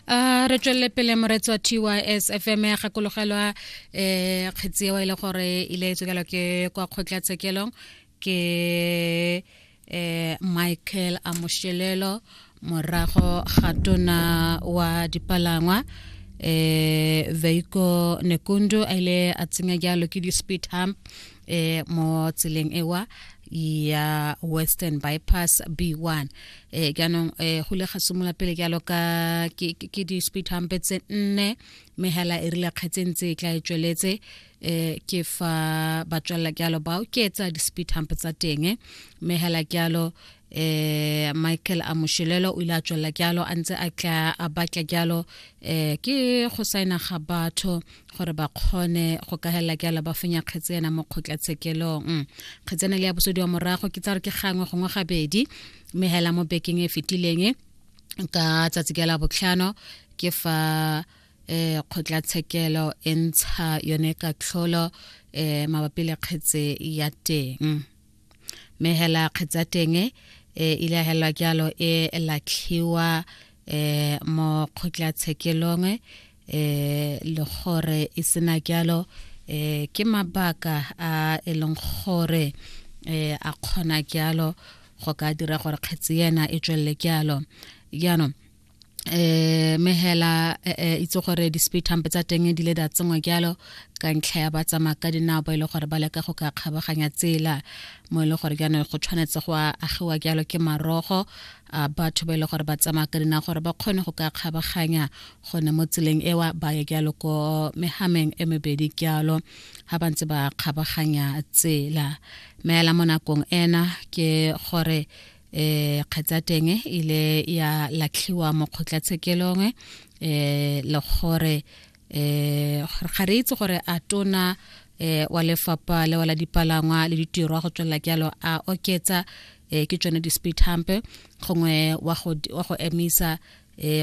a re tswelele pele moretsi wa tys fm ya gakologelwa um eh, kgetsi eo e le gore e ile e tswekelwa ke kwa kgotlatshekelong ke um michael amoshelelo morago ga tona wa dipalangwa eh veiko nekundu a ile a tsenya jalo ke di-speed hump eh mo tseleng ewa ya western bypass b1 eh jaanong eh go le ga simola pele jalo ka ke di-speed humpe tse nne mme hela e rile kgetseng tse e tla e tsweletse eh ke fa ba tswelela jalo ba oketsa di-speed humpe tsa teng mme hela jalo eh Michael Amushelelo o ile a tswelela jalo a ntse a tla a batla jalo eh ke go saena ga batho gore ba kgone go ka hela ke ala ba fenya kgetse ena mo kgotlatshekelong mm. kgetse ena le ya bosodi wa morago ke tsa re ke gangwe gongwe gabedi mme hela mo bekeng e fetileng ka tsatsi ke la botlhano ke fa eh kgotlatshekelo e ntsha yone katlholo eh mabapi le kgetse ya teng mme hela kgetse ya teng e ile ya helwa jalo e latlhiwa eh mo kgotlatshekelong eh le gore e sena jalo eh ke mabaka a e leng gore eh a kgona jalo go ka dira gore kgetsi yena e tswelele jalo jaanong eh mehela eh, eh, itse gore di-speed hump tsa teng di le da tsengwa jalo ka ntlha ya ba tsamaya ka dinao ba e le gore ba leka go ka kgabaganya tsela mo e le gore jaanong go tshwanetse go agiwa jalo ke marogo a batho ba e le gore ba tsamaya ka dinao gore ba kgone go ka kgabaganya gone mo tseleng ewa ba ye jalo ko mehameng e mebedi jalo ga ba ntse ba kgabaganya tsela meela mo nakong ena ke gore um kgetsa teng e ile ya latlhiwa mo kgotlatshekelong um le gore um ga re itse gore a tona um wa lefapha le wa la dipalangwa le ditirwa go tswelela jalo a oketsa um ke tsone di-speed hump gongwe wa go emisa um